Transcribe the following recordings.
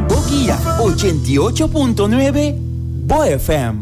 Bokia ochenta i ocho punto nuebe, bo FM.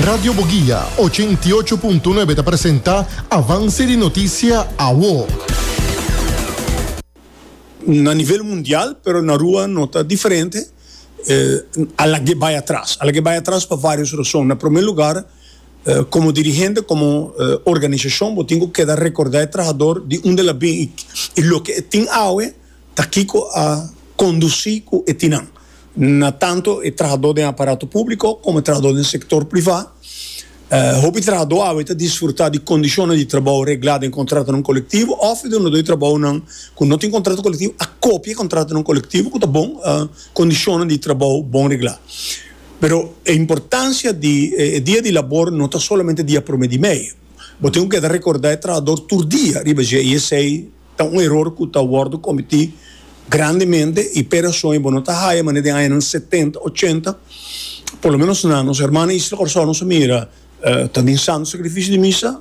Radio Bogia ochenta i ocho punto nuebe ta presenta Avance di Noticia Awo. Na nivel mundial, pero na rua no ta diferente, a lag'é bai atras. A lag'é bai atras pa varios rason. Na promé lugar, Komo dirigente, komo organisashon bo tin ku keda rekordá e trahador di unda el a bin i loke e tin awe ta kiko a kondusí ku e tin nan na tantu e trahadó den aparato públiko komo e trahadó den sektor privá. Hopi trahadó awe ta disfrutá di kondishonnan di trabou reglá den kontratonan kolektivo òf e dunadó di trabounan ku no tin kontrato kolektivo a kopia e kontratonan kolektivo ku ta bon kondishonnan di trabou bon reglá. Pero e importancia di e dia di labor no ta solamente dia prome di mei. Bo tin cu keda recorda e trahador tur dia riba dje y esey ta un eror cu ta wordo cometi grandemente y p'e rason y bo no ta haya manera den añanan setenta, ochenta por lo menos na nos hermana Isla Corazon nos a mira ta den Santo Sacrificio di Misa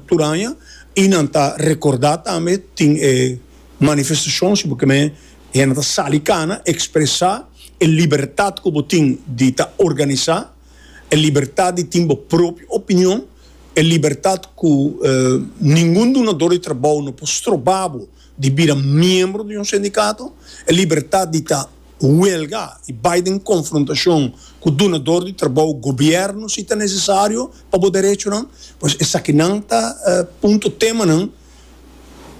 tur aña y nan ta recorda tambe tin e manifestacion si bo ke. Hende ta sali cana, expresa e libertad cu bo tin di ta organisa, e libertad di tin bo propio opinion, e libertad cu ningun dunador di trabou no por stroba bo di bira miembro di un sindicato, e libertad di ta huelga y bay den confrontacion cu dunador di trabou, gobierno si ta necesario pa bo derechonan, pues esakinan ta punto, temanan.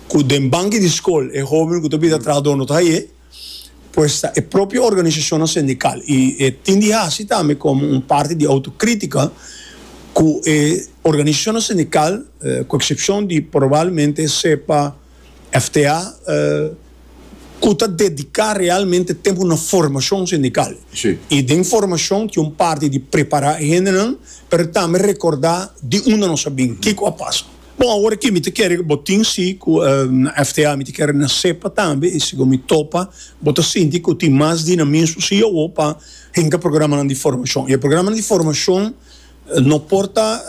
cu den banki di scol e hobennan cu ta bida trahador no ta haye, pues ta e propio organisacionnan sindical y e tin di haci tambe como un parti di autocritica cu e organisacionnan sindical, cu excepcion di probablmente sepa FTA, cu ta dedica realmente tempo na formacion sindical y den formacion tin un parti di prepara e hendenan pero tambe recorda di unda nos a bin, kico a pasa. Bon awor aki mi ta kere ku bo tin si ku FTA mi ta kere na sepa tambe i si ku mi topa bo ta sinti ku tin mas dinamismo si awor pa hinka programanan di formashon i e programanan di formashon no por ta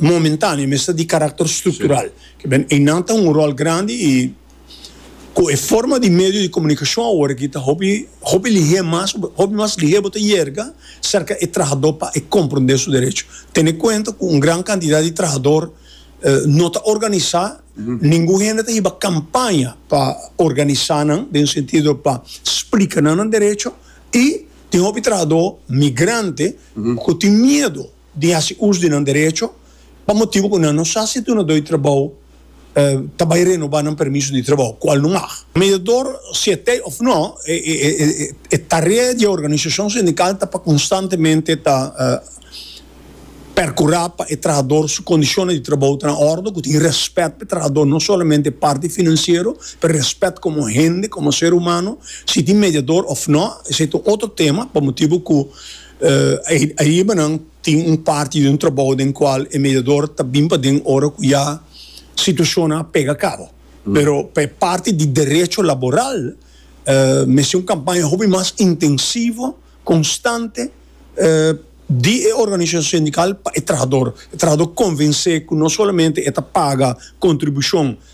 momentaneo mester di karakter struktural kibera einan ta hunga un ròl grandi i Cu e forma di medio di comunicacion awor aki ta hopi hopi lihe mas, hopi mas lihe bo ta yerga cerca e trahador pa e comprende su derecho. Tene cuenta cu un gran cantidad di trahador no ta organisa, ningun hende ta hiba campaña pa organisa nan den sentido pa splica nan nan derecho y tin hopi trahador migrante cu tin miedo. di hasi us di nan derecho pa motibu ku nan no sa si e dunadó di trabou ta bai renobá nan permiso di trabou, kual no mag. Mediador, si e t'ei òf nò, e tarea di e organisashon sindikal ta pa konstantemente ta perkurá pa e trahador su kondishonnan di trabou ta na òrdu, ku tin rèspèt pa e trahador, no solamente e parti finansiero, pero rèspèt komo hende, komo ser humano. Si tin mediador òf nò, esei ta un otro tema, pa motibu ku. Aribanan tin un parti di un trabou den cual e mediador ta bin paden ora cu ya situacionnan a pega cabo. Pero pa e parti di derecho laboral mester un campaña hopi mas intensivo, constante di e organisacion sindical pa e trahador. E trahador convense cu no solamente e ta paga contribucion